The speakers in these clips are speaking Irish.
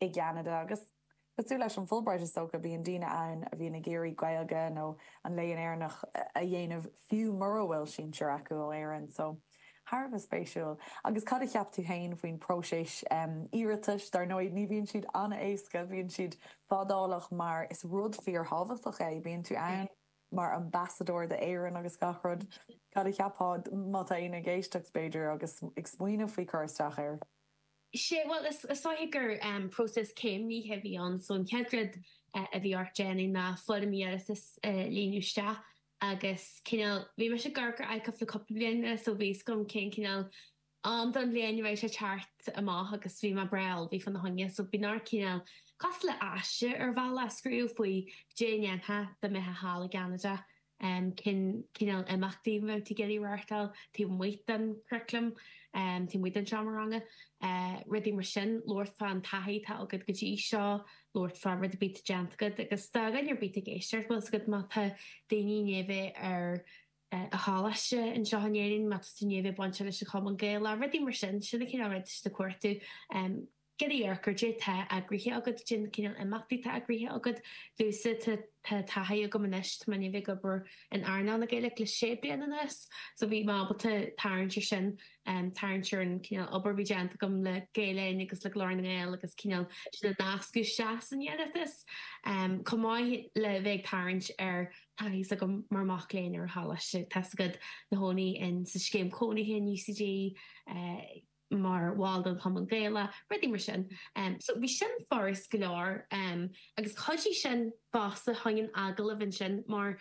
I gCeanada, agus cosúil leis an Fulbright is dócha, bíonn daoine ann a bhíonn ag iarraidh Gaeilge nó an Léann Éireannach a dhéanamh fiú mura bhfuil sinsir acu ó Éirinn. So, thar a bheith spéisiúil. Agus cad a cheap tú féin faoin bpróiseas iarratais? Dar ndóigh, ní bhíonn siad an-éasca, bíonn siad fadálach mar is rud fíorthábhachtach é, bíonn tú ann mar ambasadóir d'Éirinn agus gach rud. Cad a cheapfá, má tá éinne ag éisteacht, b'fhéidir, agus ag smaoineamh faoi cur isteach air? Sea, bhuel, is dóigh gur próiseas céimnithe a bhí ann, so an chéad rud a bhí ort déanamh ná foirm iarratais a líonadh isteach agus cineál, bhí mise ag amharc ar ICUF le cúpla bliain anuas so bhí a fhios agam cén cineál am den bhliain a raibh sé ag teacht amach agus bhí mé breá ullmhaithe fá na choinne so bíonn ort cineál cosúil le aiste ar bhealach a scríobh faoi caidé a dhéanfá dá mbeifeá thall i gCeanada. cén cineál imeachtaí a mbeidh tú ag iarraidh a reáchtáil taobh amuigh den churaclam, taobh amuigh den seomra ranga, rudaí mar sin. Labhairt fán taithí atá agat go dtí seo, labhairt fá rud ar bith atá déanta agat agus do dhuine ar bith atá ag éisteacht, bhfuil a fhios agat, má tá daoine i ndiaidh a bheith ar an choláiste anseo in Éirinn, má tá tú i ndiaidh a bheith bainteach leis an Chumann Gaelach, rudaí mar sin. Sin an cineál ruda atá siad ag cuartú. Ag iarraidh amharc ar caidé atá eagraithe agat, cén cineál imeachtaí atá eagraithe agat, you see, tá taithí agam anois, tá mé i ndiaidh a bheith ag obair in earnáil na Gaeilge le sé bliana anuas, so bhí mé ábalta tarraingt ar sin, tarraingt ar an cineál obair a bhí déanta agam le Gael Linn agus le Glór na nGael agus cineál sin a nascadh isteach san iarratas, chomh maith le bheith ag tarraingt ar taithí a bhí agam mar mac léinn ar an choláiste, tá a fhios agat, i mo chónaí in sa scéim cónaithe in UCD, mar bhall den Chumann Gaelach, rudaí mar sin. So bhí sin furast go leor agus chuidigh sin fosta chuig an agallamh ansin mar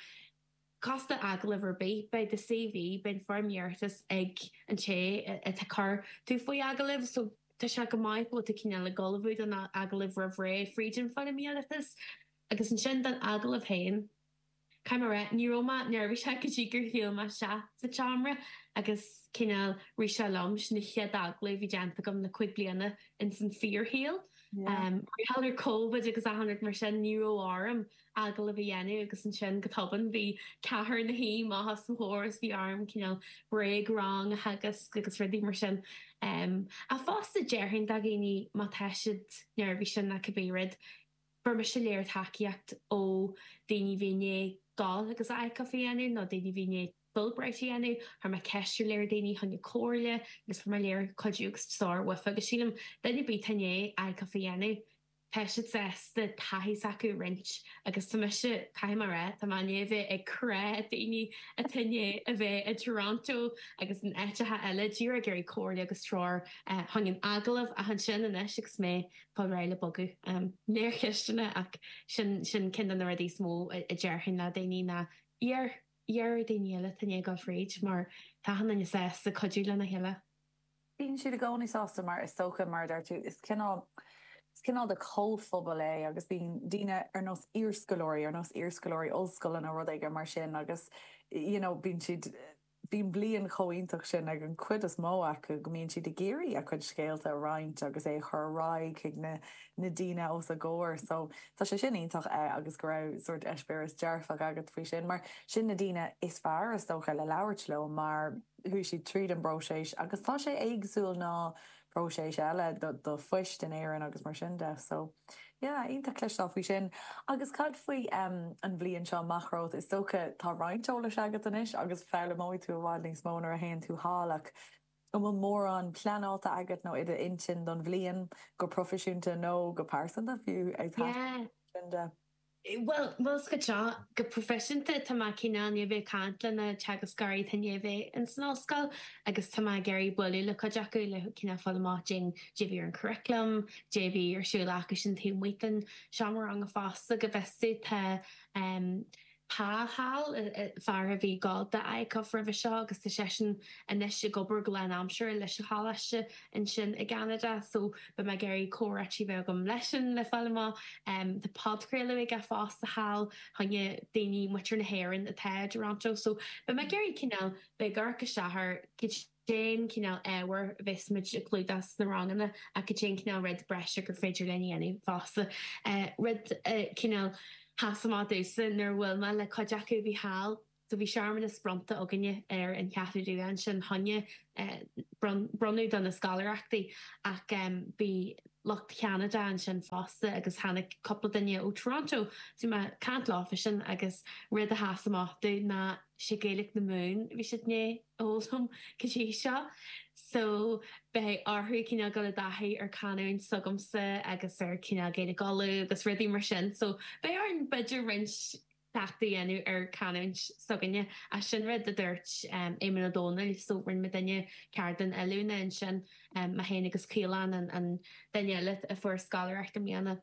cosúil le agallamh ar bith, beidh do CV, beidh an foirm iarratais ag an té atá ag cur tú faoi agallamh so tá sé go maith go bhfuil tú cineál ag ullmhú don agallamh roimh ré fríd an foirm iarratais. Agus ansin don agallamh féin. Caithfidh mé a rá, ní raibh mé neirbhíseach go dtí gur shiúil mé isteach sa tseomra agus cineál rith sé liom. Sin an chéad agallamh a bhí déanta agam le cúig bliana ins an fíorshaol. Mar gheall ar Covid agus achan rud mar sin, ní raibh orm agallamh a dhéanamh agus ansin, go tobann, bhí ceathrar ina suí amach os mo chomhair agus, bhí orm cineál bréag-rang a theagasc agus rudaí mar sin. Ach fosta, déarfainn do dhaoine má tá siad neirbhíseach ná cibé rud, Fuair mise lear tacaíocht ó daoine a bhí i ndiaidh gabháil agus ICUF a dhéanamh, nó daoine a bhí i ndiaidh Fulbright a dhéanamh, chuir mé ceist ar lear daoine, chun comhairle agus fuair mé lear cuidiú agus so ar dóigh agus sílim duine ar bith atá i ndiaidh ICUF a dhéanamh, tá siad sásta taithí s'acu a roinnt agus tá mise, caithfidh mé a rá, tá mé i ndiaidh a bheith ag crá daoine atá i ndiaidh a bheith i dToronto agus in áiteacha eile díreach ag iarraidh comhairle agus treoir. Don agallamh ach ansin anois agus mé Fáil réidh le bogadh. Neart ceisteanna, ach sin ceann de na rudaí is mó a déarfainn le daoine ná, iarr ar dhaoine eile atá i ndiaidh a ghoil fríd, mar tá achan nduine sásta cuidiú lena chéile. Bíonn siad i gcónaí sásta mar is dócha, mar a deir tú, is cineál, is cineál de chomhphobal é agus bíonn daoine ar nós iarscoláirí, ar nós iarscoláirí ollscoile nó rud éigin mar sin agus, you know, bíonn siad, Bíonn bliain chomh iontach sin ag an chuid is mó acu go mbíonn siad ag iarraidh a chuid scéalta a roinnt agus é a chur ar aghaidh chuig na na daoine os a gcomhair. So, tá sé sin iontach eh agus go raibh sórt eispéireas dearfach agat faoi sin mar sin na daoine is fearr is dócha le labhairt leo mar chuaigh siad tríd an bpróiseas agus tá sé éagsúil ná próiseas eile do phoist in Éirinn agus mar sin de. So, yeah, iontach cloisteáil faoi sin. Agus cad faoi an bhliain seo amach romhat? Is dócha tá roinnt eolais agat anois agus foghlaimeoidh tú i bhfad níos mó nuair a théann tú thall ach an bhfuil mórán pleanáilte agat nó i d'intinn don bhliain, go proifisiúnta nó go pearsanta fiú, ag taisteal mar sin de? Bhuel, bhuel, scaití, go proifisiúnta, tá mé cineál i ndiaidh a bheith, ag caint le na teagascóirí, atá i ndiaidh a bheith ins an ollscoil agus tá mé ag iarraidh bualadh le cuid acu, le cineál fáil amach cad é a bhí ar an churaclam, cad é a bhí ar siúl acu sin taobh amuigh den seomra ranga fosta, go bhfios duit, tá ehm, Pa thall, fear a bhí ag gabháil do ICUF roimhe seo agus tá seisean anois ag obair go lán aimsire leis an Choláiste ansin i gCeanada so beidh mé ag iarraidh comhráití bheith agam leisean le fáil amach. Tá podchraoladh aige fosta thall, choinne daoine muintir na hÉireann atá i dToronto so beidh mé ag iarraidh cineál bheith ag amharc isteach ar cad é an cineál ábhair a bhéas muid ag clúdach sna ranganna ach cad é an cineál rud breise gur féidir linn a dhéanamh fosta. Rud a cineál sheas amach domhsa nuair a bhuail mé le cuid acu a bhí thall, So bhí searmanas bronnta againne ar an Cheathrú Rua ansin, choinne bronnadh do na scoláireachtaí, ach bhí lucht Cheanada ansin fosta agus tháinig cúpla duine ó Toronto. So bhí mé ag caint leofa sin agus rud a sheas amach dom ná sé Gaeilge na Mumhan a bhí siad a fhoghlaim go dtí seo. So beidh orthu cineál dul i dtaithí ar canúint s'agamsa agus ar cineál Gaeilge Uladh agus rudaí mar sin. So beidh orainn b'fhéidir roinnt. cleachtadh a dhéanamh ar canúint s'againne. Ach sin rud a dúirt Éamonn Ó Dónaill, so rinne muidinne ceardlann oiliúna ansin, mé féin agus Caolán, an duine eile a fuair scoláireacht i mbliana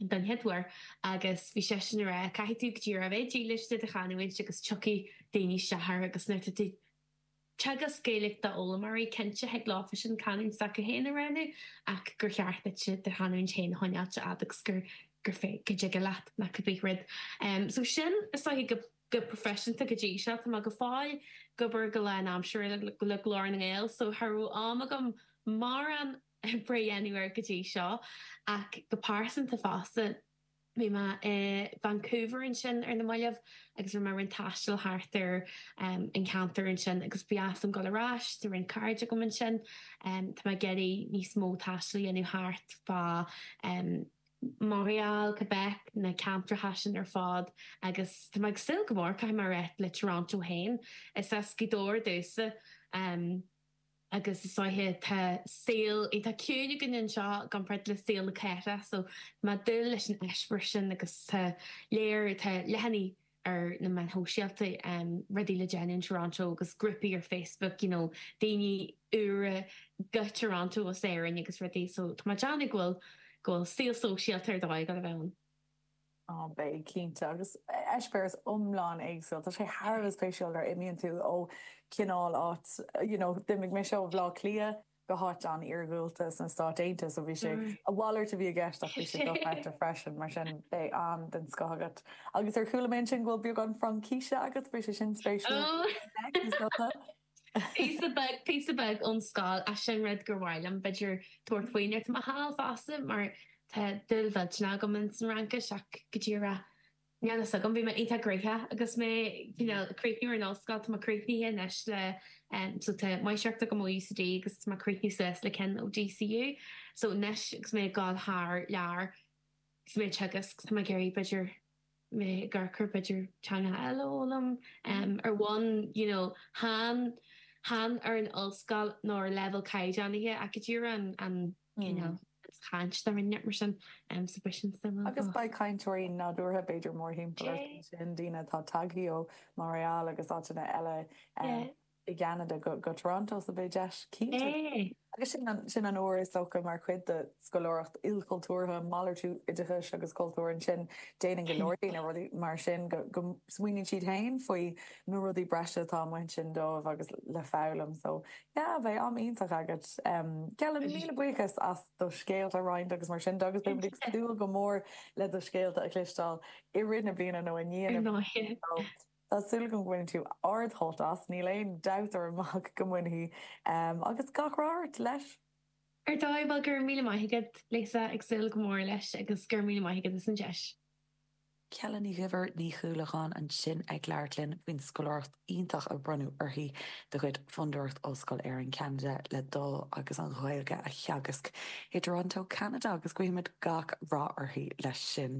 don chéad uair, agus bhí seisean a rá, caithfidh tú go díreach a bheith dílis do do chanúint agus tiocfaidh daoine isteach ort agus nuair atá tú Teagasc Gaeilge d'fhoghlaimeoirí, cinnte, thig leofasan canúint s'acu féin a roghnú, ach gur cheart duit do chanúint féin a choinneáilt a fhad agus gur féidir, go dtig leat, nach b'é an rud. So sin an smaoineamh go proifisiúnta go dtí seo. Tá mé go fóill ag obair go lánaimseartha le Glór na nGael, so cha raibh am agam mórán oibre a dhéanamh air go dtí seo, ach go pearsanta fosta, Bhí mé i Vancouver ansin ar na mallaibh agus rinne mé roinnt taistil thart ar an cheantar ansin agus ba dheas liom dul ar ais, tá roinnt cairde agam ansin. Tá mé ag iarraidh níos mó taistil a dhéanamh thart fá Montréal, Quebec, na ceantracha sin ar fad agus tá mé ag súil go mór, caithfidh mé a rá, le Toronto féin. Is as Gaoth Dobhair domhsa. agus is mar sin tá saol iontach ciúin againn anseo i gcomparáid le saol na cathracha so tá mé ag dúil leis an eispéireas sin agus tá lear, tá leathanaigh ar na meáin shóisialta rudaí le déanamh in Toronto agus grúpaí ar Facebook you know daoine úra go Toronto as Éirinn agus rudaí so tá mé ag déanamh go bhfuil go bhfuil saol sóisialta ar dóigh ag gabháil a bheith ann. Beidh, cinnte, agus eispéireas iomlán éagsúil. Tá sé thar a bheith spéisiúil nuair a imíonn tú ó chineál áit, you know, d'imigh mise ó Bhleá Cliath go háit an-iargúlta sna Stáit Aontaithe, so bhí sé, a mhalairt a bhí i gceist ach bhí sé dochreidte freisin, mar sin beidh am den scoth agat. Agus ar chuala mé ansin go bhfuil beagán Fraincíse agat, bheadh sé sin spéisiúil, is dócha. Píosa beag, píosa beag ón scoil, ach sin rud gur mhaith liom, b'fhéidir tabhairt faoi nuair atá mé thall fosta mar tá dúil mhillteanach agam ins an Fhraincis ach go díreach níl a fhios agam, bhí mé iontach gnoitheach agus mé, you know, ag críochnú ar an ollscoil, tá mé críochnaithe anois le, em, so tá máistreacht agam ó UCD agus tá mé críochnaithe suas le ceann ó DCU, so anois agus mé ag dul thar lear is mé ag teagasc, tá mé ag iarraidh b'fhéidir, mé ag cur, b'fhéidir teanga eile a fhoghlaim ar bhonn you know chan chan ar an ollscoil nó ar leibhéal caighdeánaithe ach go díreach an an you know an chaint dáiríre mar sin so píosa Fraincise b'fhéidir Agus beidh cainteoirí nádúrtha b'fhéidir mórthimpeall ort ansin, daoine atá tagtha ó Montréal agus áiteanna eile, i gCeanada go Toronto so beidh deis, cinnte, agus sin anuas is dócha mar chuid de scoláireacht ilchultúrtha, malartú oideachais agus cultúir ansin. Déanann go leor daoine rudaí mar sin, go smaoiníonn siad féin faoi na rudaí breise atá amuigh ansin dóibh agus le foghlaim. So, yeah, beidh am iontach agat. Geallaim, míle buíochas as do scéalta a roinnt agus mar sin de agus beimid ag súil go mór le do scéalta a chloisteáil i rith na bliana nó i ndiaidh na bliana. Tá súil agam go mbainfidh tú ard-shult as, níl aon dabht orm ach go mbainfidh, agus gach rath ort leis! Ar dóigh, bhuel go raibh míle maith agat Lisa, ag súil go mór leis agus go raibh míle maith agat as an deis. Ceallaigh Ní Dhuibhir Ní Chúlacháin ansin ag labhairt linn faoin scoláireacht iontach a bronnadh uirthi de chuid Fondúireacht Ollscoil Éireann Ceanada le dul agus an Ghaeilge a theagasc i dTorontó Ceanada agus guímid gach rath uirthi leis sin.